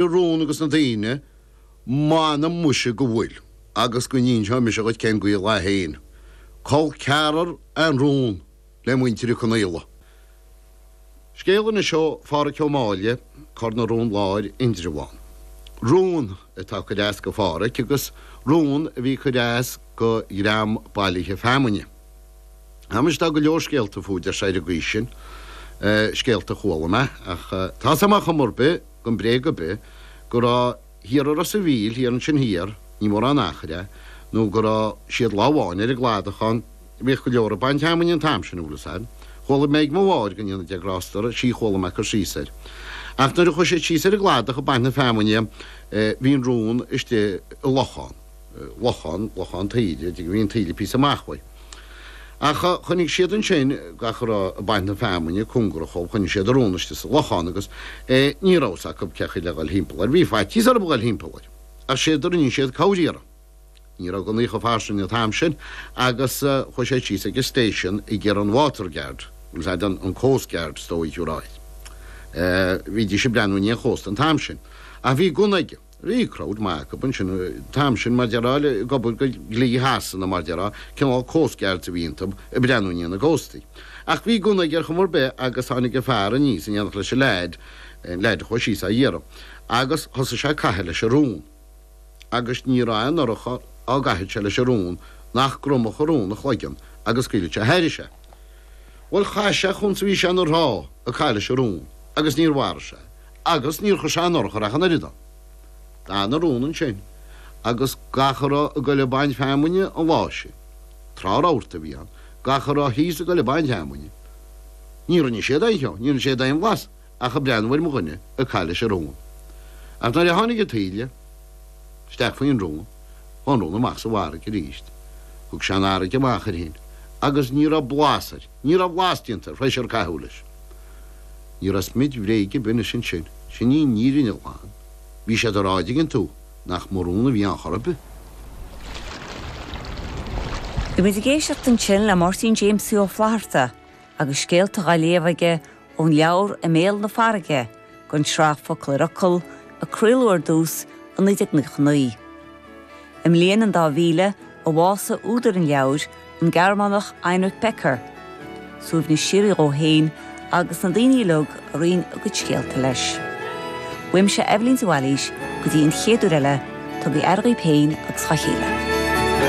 na rón agus na daoine, m'anam muise go bhfuil, agus go n-inseoidh mise dhuit cén gaol é féin, col ceathrar an rón le muintir Uí Conaola. Scéal anseo ó Phádhraic Ó Máille, Cor na Rón Láir, Indreabhán. Rón atá ag cur as go Phádhraic agus rón a bhí ag cur as go dhream bailithe feamainne. Tá, muise, tá go leor scéalta fúthu ar an gcaoi sin, scéalta a chuala mé, ach tá 's a'm ar chuma ar bith, gan bréag ar bith, go raibh thiar i Ros a' Mhíl, thiar annsin thiar, ní mórán achair é, nó go raibh siad lá amháin ar an gcladach ann, bhíodh go leor ag baint fheamainne an t-am sin, bhfuil 'fhios a'd. Chuala mé ag mo mháthair go ndéana Dia grásta uirthi, chuala mé cur síos air. Ach nuair a chuaidh siad síos ar an gcladach ag baint na feamainne bhí an rón istigh i lochán. lochán, lochán taoide, de go mbíonn taoille píosa amach uaidh. Ach choinnigh siad annsin gach a raibh ag baint na feamainne cúngarach dhóibh choinnigh siad an rón istigh sa lochán agus ní raibh fhios acu cén chaoi le ghoil thimpeall air. Bhí faitíos orthu a ghoil thimpeall air ach séard a rinne siad camhriaradh. Ní raibh gunnaí chomh fairsing an t-am sin agus chuaidh sé síos ag an station ag iarraidh an water guard agus an an an coast guard is dóigh a ráidht. Bhídís ag breathnú i ndiaidh an chósta an t-am sin. Ach bhí gunna aige. Bhí crowd maith acu ansin an t-am sin mar déarfá, ag obair go dhlí Shasana mar déarfá, cineál coast guards a bhí iontub ag breathnú i ndiaidh na gcóstaí. Ach bhí gunna aige ar chuma ar bith agus tháinig an fear aníos in éineacht leis an leaid, an leaid a chuaigh síos á iarraidh, agus thosaigh sé ag caitheamh leis an rón. Agus ní raibh aon urchar á gcaitheadh sé leis an rón nach gcromadh an rón a chloigeann agus scaoileadh sé thairis é. Bhuel chaith sé chúns a bhí sé ina thrá ag caitheamh leis an rón agus níor mharaigh sé. Agus níor chuir sé aon urchar ach an oiread ann. D'fhan an rón ansin, agus gach a raibh ag goil ag baint feamainne an lá sin, trá rabharta a bhí ann, gach a raibh thíos ag goil ag baint feamainne, ní rinne siad aon cheo, ní rinne siad aon bhlas ach ag breathnú ar mo dhuine ag caitheamh leis an rón. Ach nuair a tháinig an taoille isteach faoin rón, chuaigh an rón amach sa bhfarraige aríst. Thug sé an fharraige amach air fhéin, agus ní raibh blas air. Ní raibh blas déanta tar éis ar caitheadh leis. Ní raibh smid bhréige ar bith anois ansin. Sin í an fhírinne ghlan. Bhí siad ag rá, 'dtuigeann tú, nach mba rón a bhí ann chor ar bith. Bhí muid ag éisteacht ansin le Máirtín Jaimsie Ó Flaithearta agus scéalta á léamh aige Ón leabhar I mBéal na Farraige, den tsraith Focal ar Fhocal, a craoladh ar dtús i 1999. I mbliain an dá mhíle a bhásaigh údar an leabhair, an Gearmánach Heinrich Becker. Suaimhneas síoraí dhó fhéin agus na daoine uilig a roinn a gcuid scéalta leis. Uaimse Eibhlín de Bhailís go dtí an chéad uair eile, tugaigí aire dhaoib fhéin agus dha chéile.